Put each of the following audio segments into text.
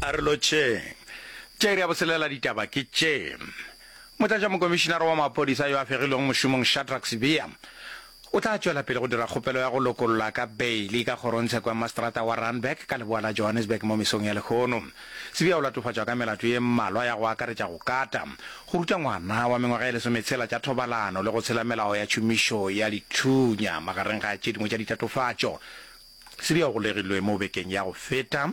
A re lotšheng. Tša iri ya botshelela ditaba ke tše. Motlatšamokomišinara wa maphodisa yo a fegilwego mošomong Shadrack Sibiya o tla tšwela pele go dira kgopelo ya go lokollwa ka beili ka kgorongtsheko ya maseterata wa Randburg ka leboa la Johannesburg mo mesong ya lehono. Sibiya o latofatšwa ka melato ye mmalwa ya go akaretša go kata, go ruta ngwana wa mengwaga e lesometshela tša thobalano le go tshela melao ya tšhomišo ya dithunya magareng ga tše dingwe tša ditatofatšo. Se di golegilwe mo bekeng ya go feta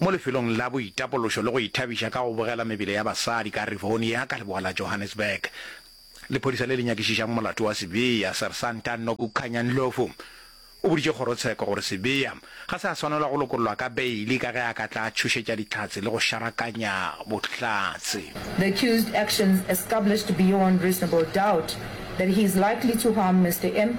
mo lefelong la boitapološo le go ithabiša ka go bogela mebele ya basadi ka Rivonia ka leboa la Johannesburg. Lephodisa le le nyakišišang molato wa Sibiya, Sersanta Nokukhanya Ndlovu, o boditše kgorotsheko gore Sibiya ga se a swanelwa go lokollwa ka beili ka ge a ka tla a tšhošetša dihlatse le go šarakanya bohlatse. The accused actions established beyond reasonable doubt that he is likely to harm Mister M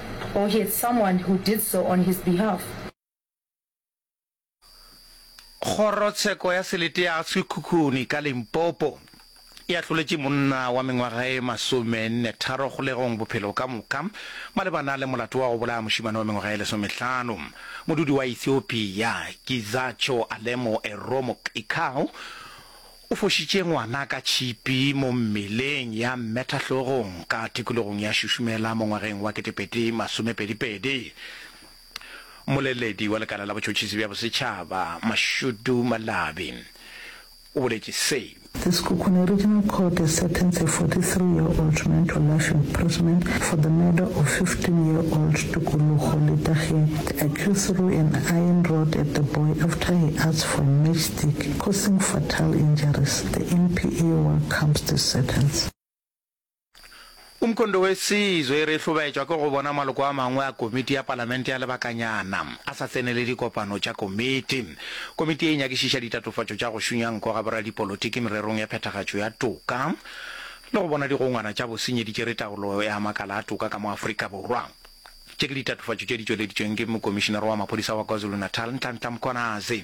Or he had someone who did so on his behalf. Kgorotsheko ya Selete ya Sekhukhune ka Limpopo e ahloletše monna wa mengwaga e masomenne tharo kgolegong bophelo ka moka malebana le molato wa go bolaya mošemane wa mengwaga e lesomehlano. Modudi wa Ethiopia Gizacho Alemo Eromo Qikau O fošitše ngwana ka tšhipi mo mmeleng ya mmetahlogong ka tikologong ya Šušumela mo ngwageng wa ketepedi masomepedi pedi. Mmoleledi wa lekala la botšhotšhisi bja bosetšhaba, Mashudu Malabi, o boletše se. The Sekhukhune Regional Court has sentenced a 43 year old man to life imprisonment for the murder of 15 year old Tukulugo Litagie, accused through an iron rod at the boy after he asked for a matchstick. Causing Fatal Injuries, The NPA War Comes to Sentence. Umkhondo Wesizwe e re e hlobaetšwa ke go bona maloko a mangwe a komiti ya palamente ya lebakanyana a sa tsenele dikopano tša komiti. Komiti ye e nyakišiša ditatofatšo tša go šunya nko ga boradipolotiki mererong ya phethagatšo ya toka le go bona digongwana tša bosenyi di tšere taolo ya makala a toka ka mo Afrika Borwa. Tše ke ditatofatšo tše di tšweleditšweng ke Mokomišinara wa Maphodisa wa KwaZulu-Natal, Nhlanhla Mkhwanazi.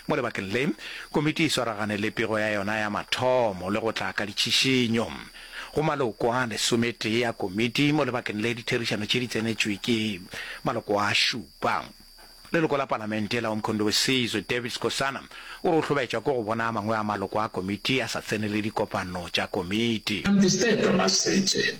Mo lebakeng le, komiti e swaragane le pego ya yona ya mathomo le go tla ka ditšhišinyo go maloko a lesometee a komiti. Mo lebakeng le, ditherišano tše di tsenetšwe ke maloko a šupa. Leloko la Palamente la Umkhondo Wesizwe, David Skosana, o re o hlobaetšwa ke go bona a mangwe a maloko a komiti a sa tsenele dikopano tša komiti. Instead of us sitting